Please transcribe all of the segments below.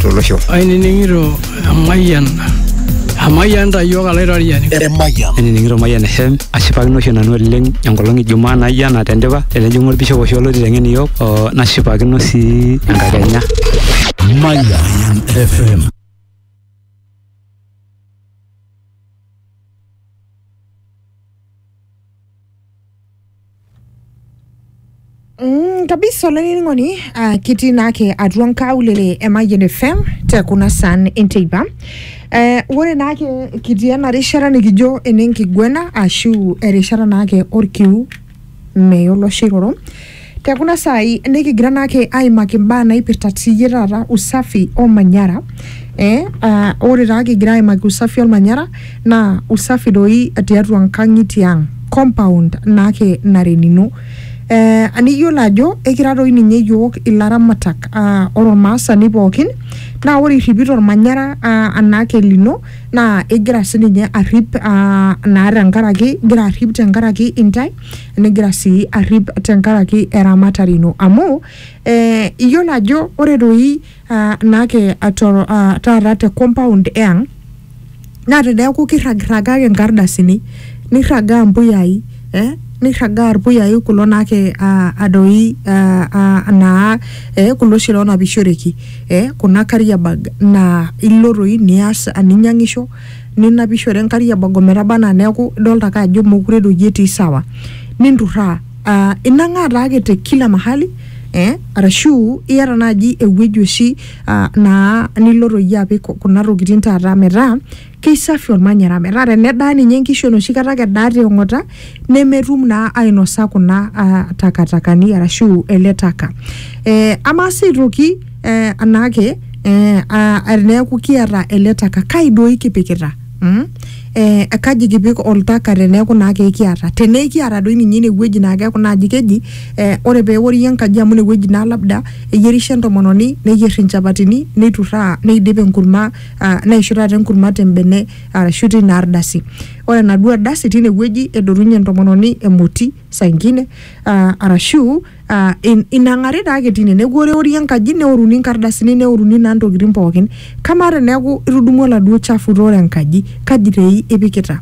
tolosho. Ainining'ito emayian emayian ta iyiook alaitoriani. Emayian. Ainining'ito Mayian FM ashipakino oshi nanu oleng enkolong e Jumaa naijo ena tendipa tenejing'u olbishop oshi olo aiteng'en iyiook oo nashipakino sii enkakenya. Mayian FM. Mm, kabisa olaining'oni uh, kitii naake atua nkaulele e Mayian FM te kuna san enteipa eh, ore naake kitii ena rishata nikijo enenkiguena ashu erishata naake orkiu meyo oloshiroro Te kuna saai nikigira naake aimaki imbaa naipirta tiyie taata usafi olmanyara eh, ah, ore taa kigira aimaki usafi olmanyara naa usafi doi tiatua nkang'itie ang compound naake nara enino eh, niyiolo ajo ekira doi ninye iyiok ilaramatak ah, ore olmaasani pookin naa ore irripito olmanyara ah, anaake lino naa igira sininye arrip ah, naa tenkaraki igira arrip tenkaraki intae. nigira sii arrip tenkaraki eramatare ino amu eh, iyiolo ajo ore doi ah, naake atoro- ah, taata te compound eang naa teneeku kirragirraga ake inkardasini nirragaa impuyai eh, nirragaa irpuyai kulo naake ah, adoi ah, ah, naa eh, kulo oshi lonapishoreki eh, kuna carrier bag naa ilo toi nias ninyiang'isho ninapishore enkari ebogo metaba anaa neeku idolta ake ajo mokure doi etii sawa ninturraa uh, inang'aa taake te kila mahali eh, arashu iyata naaji ewueji oshi uh, naa nilo toi apik kuna tokitin taata metaa keisafi ormanyara metaa tenedaa ninye inkishu enoshi kata ake edaa te ong'ota nemetum naa ainosa kuna ah, takatakani arashu ele taka eh, amaa sii aitoki eh, anaake eh, ah, teneeku kiata ele taka kai doi kipikita mm? eh, kaji kipik oltaka teneeku naa kekiata tenekiata doi ninye inewueji naa keeku naaji keji eh, ore peewori enkaji amu inewueji naa labda eyierisho entomononi neyier inchapatini neiturraa neidip enkurma ah, neishu taata enkurma tembene arashu tina ardasi. Ore enaduo ardasi tine wueji edotunye entomononi emoti saa ingine aa arashu aa inang'ari taake tine. Neeku eori enkaji neoruni inkardasini neoruni naa intokitin pookin. Kamaa teneeku itudumua oladuo chafu oota enkaji kaji doi ipikita?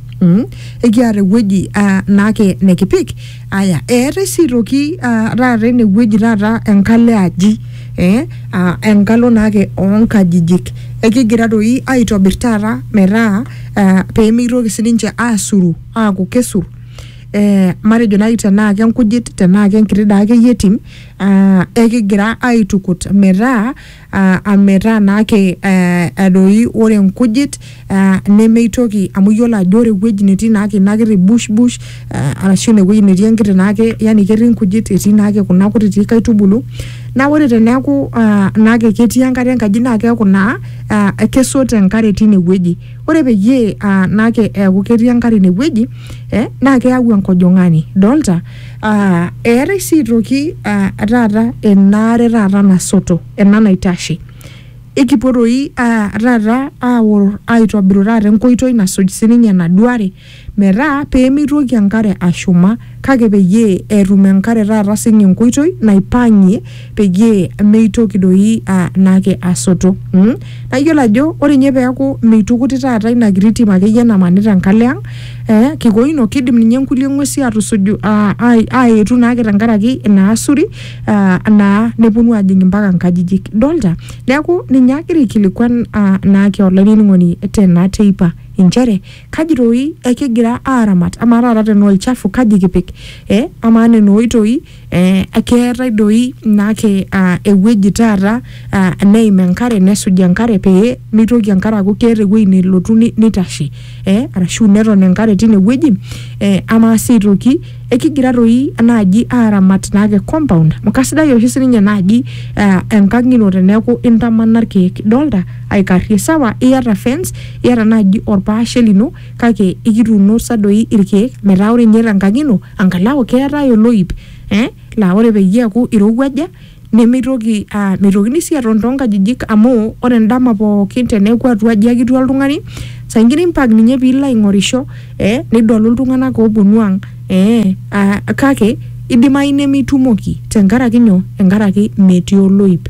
Ekiata ewueji naake nekipik. aya eetae sii aitoki ah, taata enewueji taata enkalo e aji eh, ah, enkalo naake oonkajijik ekigira doi aitobir taata metaa ah, pemeitoki sininche asuru aaku kesur eh, matejo naaji tenaa kenkujit tenaa kenkiti daa akeyie tim ah, ekigira aitukut metaa aa ametaa naake aa adoi ore nkujit aa nemeitoki amu iyiolo ajo ore ewueji netii naake ina kiti bush bush aa arashu ine wueji netii enkiti naake yani ketii nkujit etii naake kuna kutitik aitubulu. Naa ore teneeku aa naake ketii enkare enkaji naa keeku naa aa kesoto enkare tine wueji, ore peyie aa naake eeku ketii enkare ine wueji ee naake eyau enkojong'ani. Idolta? Ah, eetae sii aitoki ah, taata enaare taata nasoto ena naitashe ikipuo toi ah, taata aor aitobiru taata enkoitoi nasuj sininye enaduo are metaa pemeitoki enkare ashuma kake peyie etum enkare taata sininye enkoitoi naipang'ie peyie meitoki doi ah, naake asoto mm? naa iyiolo ajo ore ninye peeku meitukuti taata ina kiti tim akeyie namanita enkalo ang eh, kikoino kidim ninye nkulie ng'uesi atusuju ah, ai- aetu naake tenkaraki ina asuri ah, naa neponu ajing mpaka nkajijik dolta neeku ninye agira aikilikuan ah, naake olainining'oni tena teipa inchere kaji toi ekigira aaramat amaa taata tenaa olchafu kaji kipik eh, amaa nena oitoi eh, keetae doi naake uh, ewueji taata uh, neim enkare nesuj enkare pee mitoki enkare aaku keeta ewueji nelotu ni- nitashe eh, arashu neton enkare tine wueji eh, amaa sii aitoki ekigira doi naaji aaramat naake compound amu kasidai oshi sininye naaji uh, enkang ino teneeku intamana irkeek idolta aikarrie sawa iyata fence iyata naaji orpaashe lino kake ikituuno sa doi irkeek metaa ore inye tenkang ino angalau keetae oloip eh, laa ore peyie eeku irowuaja nemeitoki ah, meitokini sii aton toonkajijik amu ore endama pookin teneeku atua aji ake etii oltung'ani saa ingine impaak ninye piilo aing'orisho eh, nidolu iltung'anak ooponu ang eh, ah, kake idimai nemitumoki tenkaraki nyoo tenkaraki metii oloip.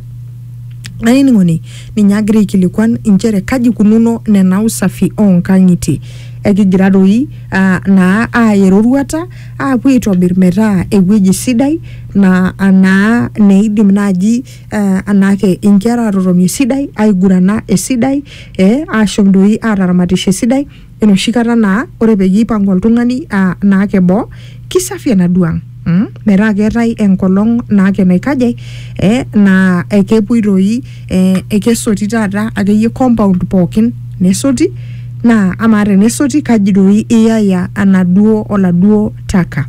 Ainining'oni ninye agira aikilikuan inchere kaji kununo nena usafi oonkang'itie. Ekigira doi ah, naa aaya eroruata aapuo aitobir metaa ewueji sidai naa anaa neidim naaji eh, anaake inkera aatotoni esidai, aigurana esidai eh, ashom doi aataramatisho esidai. Enoshi kata naa ore peyie eipang'u oltung'ani aa naake boo, kisafi enaduo ang' mm, metaa keetae enkolong' naake naikaja eh, naa kepuoi doi eh, ekesoti taata akeyie compound pookin nesoti naa amaa tenesoti kaji doi iyaya enaduo oladuo taka.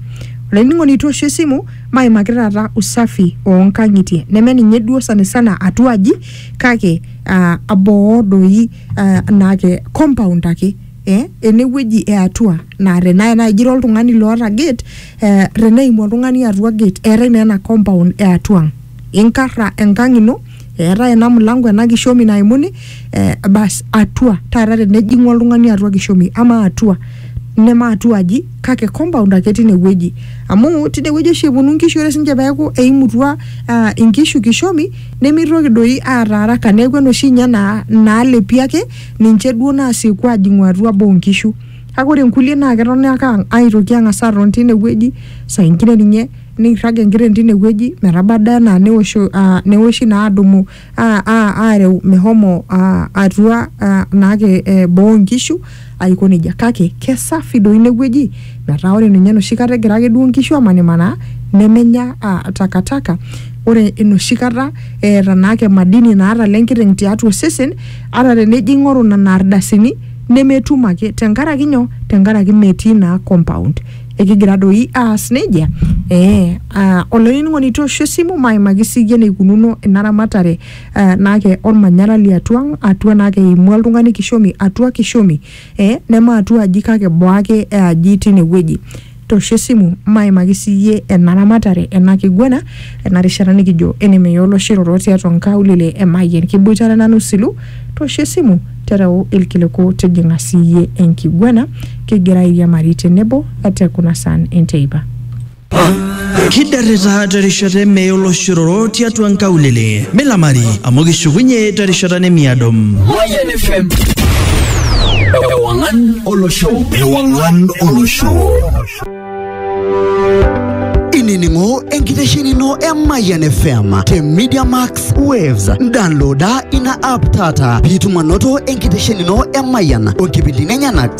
Olainining'oni toosho esimu maimaki taata usafi oo nkang'itie neme ninye duo sana sana atua aji kake ah, boo doi. ah, naake compound ake eh, enewueji e atua naa tenaa naaji ira oltung'ani loota gate eh, teneimu oltung'ani atua gate eetae naa ena compound e atua ang inkarra enkang ino eetae ena mlango ena kishomi naimuni eh, bas atua taata tenejing'u oltung'ani atua kishomi ama atua neme atua aji kake compound ake tinewueji amu tinewueji oshi eponu nkishu ore sinche peeku eimutua uh, inkishu kishomi nemeitoki doi aata araka neeku enoshi inye naa naalepi ake ninche duo naasieku ajing'u atua boo nkishu kake ore nkulie naa ketoni ake ang- aitoki ang'as aton tine wueji saa ingine ninye neirrag enkiteng tine wueji metaba ade anaa newosho uh, newoshi naa adumu uh, uh, areu mehomo uh, atua uh, naake eh, boo nkishu aiko nejia kake kesafi doi ine wueji metaa ore ninye enoshi kata egira ake duo nkishu amanimanaa nemenya uh, takataka ore enoshi kata eeta naake madini naata le nkiteng tiatua osesen ata tenejo ing'oru nena ardasini nemetum ake tenkaraki nyoo tenkaraki metii naa compound ekigira doi aas nejia ee uh, olainining'oni toosho esimu maimaki siyie eneikununo ina ramatare eh, naa ke olmanyara liatua ang atua naa keimua oltung'ani kishomi atua kishomi eh, neme atua aji kake boo ake e aji tine wueji tosho esimu maimaki siyie ena ramatare ena kiguana ena rishata nikijo enemeya oloshiroro tiatua nkaulele e Mayian kiboitare nanu silu tosho esimu tereu ilkiliku tijing'a siyie enkiguana kigira airiamari tenebo te kuna saan enteipa kidarrita terishata emee oloshororo tiatua nkaulele milamari amu kishukunye terishata nemiado Mayan FM. Ewangan Olosho. Ewangan Olosho. inining'o enkiteshenino e Mayan FM te Media Max Waves. Downloada ina app taata piitum anoto enkiteshenino e Mayan o nkipindini enyenak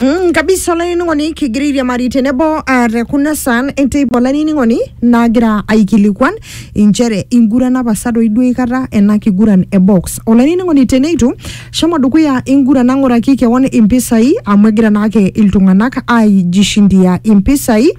Mm, kabisa olainining'oni kigira airiamari tenebo ah, te kuna saan enteipa olainining'oni naagira aikilikuan inchere inguran apa sa doi duo aikata ena kiguran e box olainining'oni teneitu shomo dukuya ingurana ng'uraki kewon impisai amu egira naake iltung'anak aijishindia impisai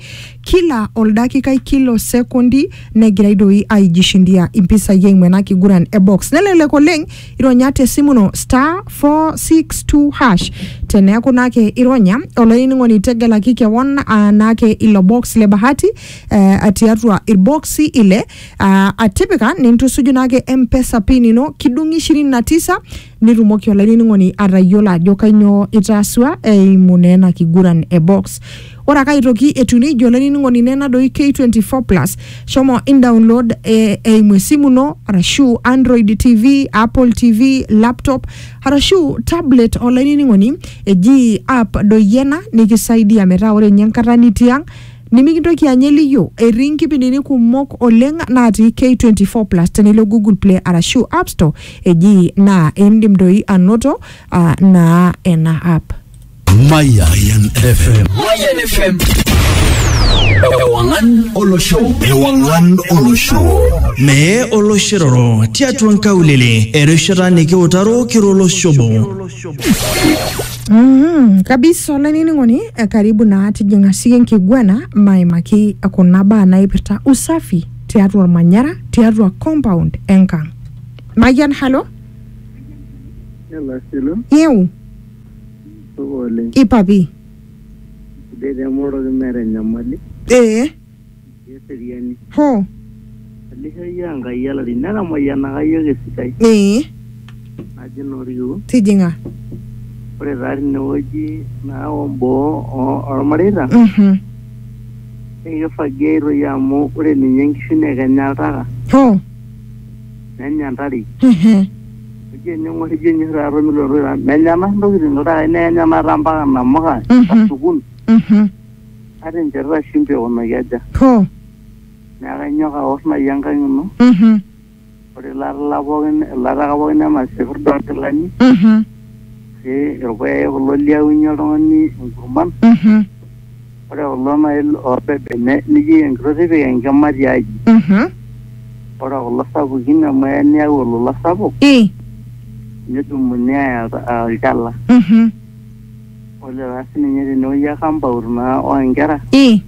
kila oldakikai kila osekondi negirai doi aijishindia impisai eimu ena kiguran e box nelelek oleng ironya te simu ino star 462 hash teneeku naake ironya olainining'oni tegelaki kewon aa naake ilo box le bahati eh, tiatua irboksi ile ah, atipika nintusuju naake mpesa pin ino kidung'i ishirini na tisa nitumoki olainining'oni atayiolo ajo kainyoo itaasua eimu naa ena kiguran e box Ore ake aitoki etiu neijia olainining'oni naa ena doi K24 Plus. Shomo indownload eh, eimu esimu ino arashu Android TV, Apple TV, laptop arashu tablet olainining'oni eji app doi ena nikisaidia metaa ore ninye enkata nitii ang' nimikintoki anya eliyio. Etii nkipindini kumok oleng natii K24 Plus tenilo Google Play arashu App Store eji naa indim doi anoto ah, naa ena app. Mayan FM. Mayan FM. Ewangan Olosho. Ewangan Olosho. Mee oloshiroro tiatua nkaulele erishata nikiutaro kiroloshobo. Mm, kabisa olainining'oni eh, karibu naa tijing'a siye nkiguana maimaki kuna baa naipirta usafi tiatua ormanyara tiatua compound enkang mayian halo Hello, Silo. yeu Supa oleng. ipa pii Sidai taa emoroki meeta enyamali. ee Etii eseriani. hoo Elisha iyie aa Enkai olari. Netamayianaka iyiook esidai. ee Naji naa Orkiu. tijing'a Ore taa tinewueji naa o boo oo- olmareita Mhm. naa kifagiai toi amu ore ninye inkishu naa kenya oltaka. hoo nenya ntare Mhm. ijo ening'or ijo enyor taata milotu taa menya ena ntokitin iltakai neenya naata mpaka namuka Mhm. sukul Mhm. ata encherita shimbi aikunaki aja Hoo. neeku kainyoo kaor naaji enkang ino Mhm. ore ilatala pookin ilataka pookin ena sipirda onkilani Mhm. si irpuyai kulo liaunyie oltung'ani inkurman Mhm. Ore kulo naaji loobebene nijoki enkitok tipika enkima tiaji. Mhm. Ore kulo sapukin amu eya niyau olola sapuk I. nedumuni aaya olta- aa olchala. Mhm. Ore taa siininye tenewueji e kampaut naa oo nkera, I.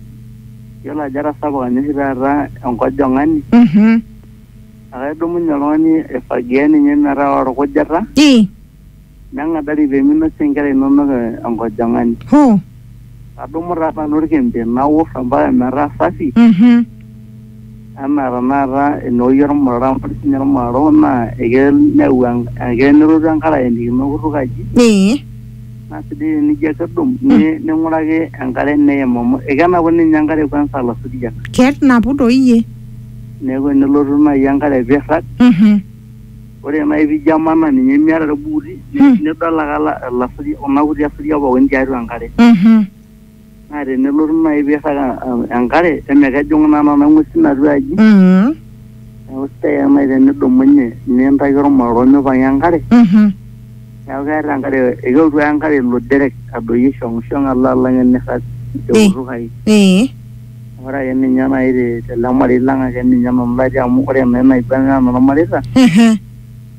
iyiolo ajo etasapuka ninye oshi taata enkojong'ani Mhm. akae idumunye oltung'ani aifagia ninye metaa olkujita. I. Neng'adari pee minosie nkera inono enkojong'ani. Hoo. Adumu taa nanu olkembe naor ompaka metaa safi. Mhm. Anaa tenakata eneoyie olmurara amu ore sii ninye olmurara owok naa ekeya neyau ekeya nelotu enkare ayenikino kutuk aji. Ee. Naa sidai tenijo ake adung ning'uraki enkare neim amu ekenapu ninye enkare kwanza ilasuriak. Kenapu doi iyie. Neeku enelotu naaji enkare pee eirrag. Mhm. Ore nai pijo amanaa ninye miata irbuuti, Hmm. nidol ake ala- ilasuri- kuna kuti asuriak pookin tiatua enkare. Mhm. Naa tenelotu nai piirrag eh, enkare, emekejung' naa nena ng'uesin atua aji, Mhm. neeku sidai ake nai tenidumunye nintaki ormororo mipang'a enkare, Mhm. neeku keeta enkare ekelotu ake enkare ilo derek adoyio shong'ishong alo alang' enirrag Ei. eutukai. Ee. Ore ake ninye nai te- tele marei lang ake ninye nanu latii amu ore naa enaiba naa enormareita Ehe.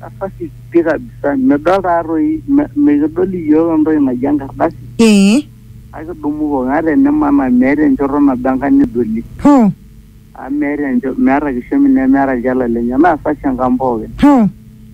kasasi pi kabisa midol taatoi me- mikidol iyiook entoki naji enkardasi Ee. kake idumu kewon ata enimanaa meeta enchoto nabo enkang nidoli Hoo. amu meeta encho meeta kishomi nemeeta ilchala lenye naa sashi enkang pookin Hoo.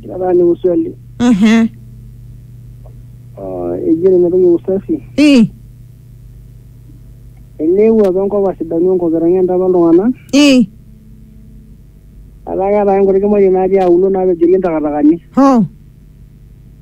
Kila saa niku swali. Aha. Oh, eji nena toki usafi. Eh. Eneewuo apa enkop asidanu enkop etang'enta apa iltung'anak. Eh. Etaa keeta ake nkuti kimaitie natii auluo naapejori intakatakani. Ho.